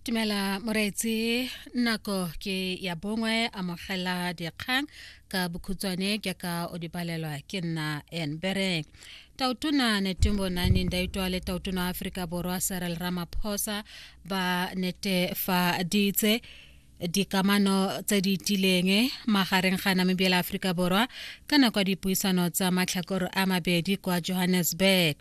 tumela moreetsi nako ke ya bongwe amogela dikgang ka bokhutswane ke ka o di palelwa ke nna enbere tautona netumbo nani ndaitwa le tautona aforika borwa serel ramaphosa ba netefaditse dikamano tse di tileng magareng ga namibia le aforika borwa ka nako ya dipuisano tsa matlhakoro a mabedi kwa johannesburg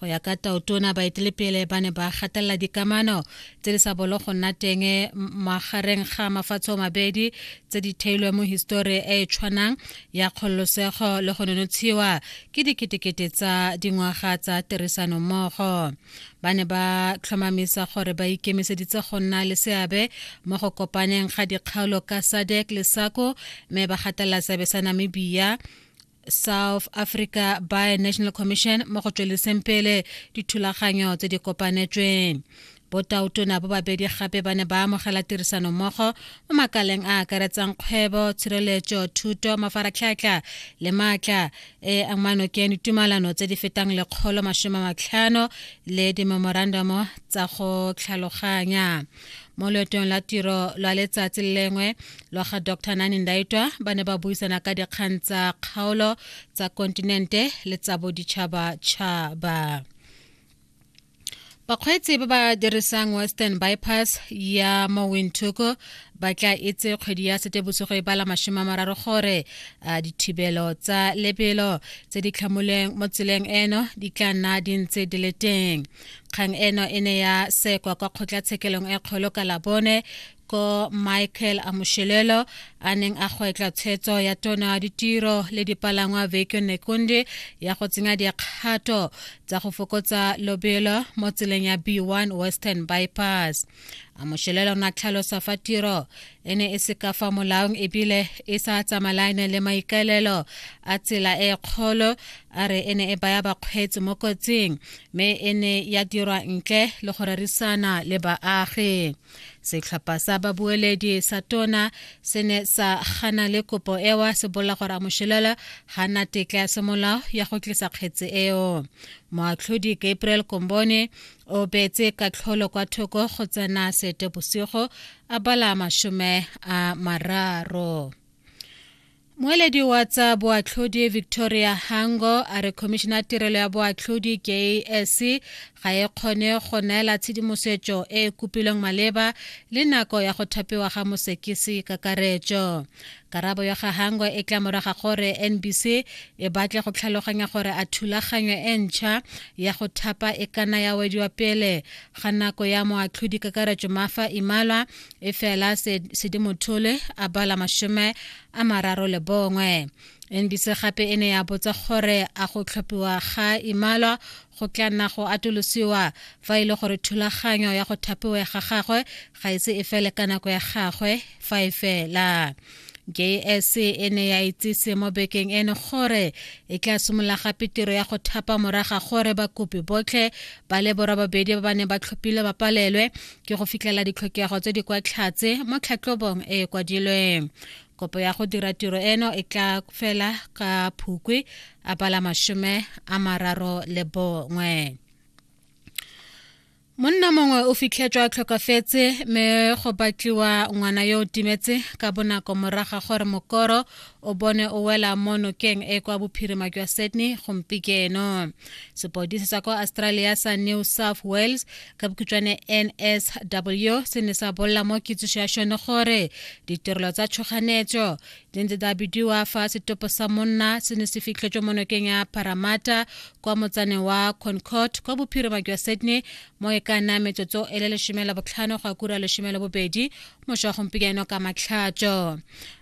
go ya ka tautona baetelepele ba ne ba gatelela dikamano tse di sa bolo go nna teng magareng ga mafatshe o mabedi tse di theilweng mo histori e e tshwanang ya kgololosego le go nonotshiwa ke diketekete tsa dingwaga tsa tirisanommogo ba ne ba tlhomamisa gore ba ikemiseditse go nna le seabe mo go kopaneng ga dikgaolo ka sadek le sako mme ba gatelela seabe sa namibia south africa by national commission mo go tsweleseng pele dithulaganyo tse di kopanetsweng botautona bo babedi gape ba ne ba amogela tirisano mmogo mo makaleng a akaretsang kgwebo tshireletso thuto mafaratlhatlha le maatla e amano ke ditumalano tse di fetang lekgolo masome matlhano le dimemorandamo tsa go tlhaloganya mo loetong la tiro lwa letsatsi le lengwe lwa ga dr nani ndaitwa ba ne ba buisana ka dikgang tsa kgaolo tsa kontinente le tsa boditšhabatšhaba bakgweetsi ba ba dirisang western bypass ya mo windhoek ba tla itse kgwedi ya setebosogo e bala mashome a mararo gore a dithibelo tsa lebelo tse di tlhamoleng mo tseleng eno di tla nna di ntse di le teng kgang eno e ne ya sekwa kwa kgotlatshekelong e kgolo ka labone ko michael amushelelo a neng a gwetla tshetso ya tona ya ditiro le dipalangwa vekyo nekonde ya go tsenya dikgato tsa go fokotsa lobelo mo tseleng ya b1 western bypass amushelelo na tlhalosa fa tiro e ne e se ka fa molaong ebile e sa tsamaelane le maikaelelo a tsela e kgolo a re e ne e baya bakgweetsi mo kotsing mme e ne ya dirwa ntle le go rerisana le baagi setlhopha sa babueledi sa tona se ne sa gana le kopo ewa se bolela gore a moshelela ga na tetla ya semolao ya go tlisa kgetse eo moatlhodi gabriel kombone o beetse katlholo kwa thoko go tsena sete bosigo a bala mashome a mararo Moeledi wa tsa boatlhodi Victoria Hango a re khomišene ya tirelo ya boatlhodi KAS ga e kgone go neela tshedimosetso e e kopilweng maleba le nako ya go thapiwa ga mosekisi kakaretso. Karabo ya ga Hango e tla moraga gore NBC e batle go tlhaloganya gore a thulaganyo e ntšha ya go thapa e kana ya wediwa pele ga nako ya moatlhodi kakaretso Mafa Imalwa e fela sedimothole a bala mashome a mararo le bongwe nbc gape e ne ya botsa gore a go tlhophiwa ga imalwa go tla nna go atolosiwa fa e le gore thulaganyo ya go thapiwa ga gagwe ga ise e fele ka nako ya gagwe fa e fela JS e ne ya itsise mo bekeng eno gore e tla simolola gape tiro ya go thapa moraga gore bakopi botlhe ba le borobabedi ba ba neng ba tlhophile ba palelwe ke go fitlhela ditlhokego tse di kwa tlhatse mo tlhatlhobong e e kwadilweng kopo ya go dira tiro eno e tla fela ka phukwi a pala masome a mararo le bongwe monna mongwe o fitlhetswa a tlhokafetse mme go batliwa ngwana yo o timetse ka bonako moraga gore mokoro o bone o wela mo nokeng e kwa bophirima jwa sydney gompieno sepodisi sa kwa australia sa new south wales ka bokhutšwane nsw se ne sa bolela mo kitsiso ya šone gore ditirelo tsa tshoganetso di ntse tsa bidiwa fa setopo sa monna se ne se fitlhetswe mo nokeng ya paramata kwa motsaneng wa concord kwa bophirima jwa sydney mo e ka nna metsotso e le lesome la botlhano go akura lesome la bobedi mošwa gompieno ka matlhatso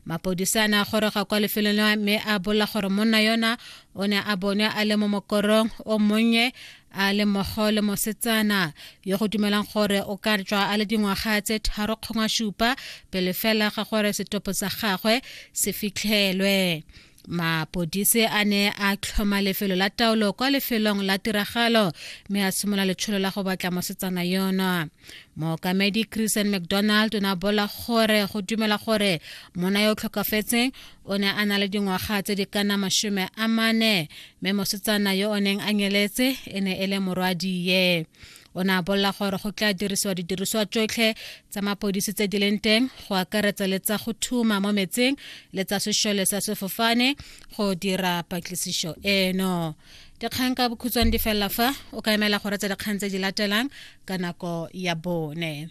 mapodisa a ne a goroga kwa lefelong leo mme a bolela gore monna yona o ne a bonwe a le mo mokorong o monnye a le mmogo le mosetsana yo go dumelang gore o ka tswa a le dingwaga tse tharo kgongwa supa pele fela ga gore setopo sa gagwe se fitlhelwe mapodise a ne a tlhoma lefelo la taolo kwa lefelong la tiragalo mme a simolola letsholo la go batla mosetsana yono mookamedi christian mcdonald o ne a bola gore go dumela gore mona yo o tlhokafetseng o ne a na le dingwaga tse di kana masome a mane mme mosetsana yo o neng a nyeletse e ne e le morwadiye o ne a bolela gore go tla dirisiwa didiriswa tsotlhe tsa mapodisi tse di leng teng go akaretsa le tsa go thuma mo metseng le tsa sešole sa sefofane go dira patlisiso eno dikgang ka bokhutshwane di felela fa o ka emela go retsa dikgang tse di latelang ka nako ya bone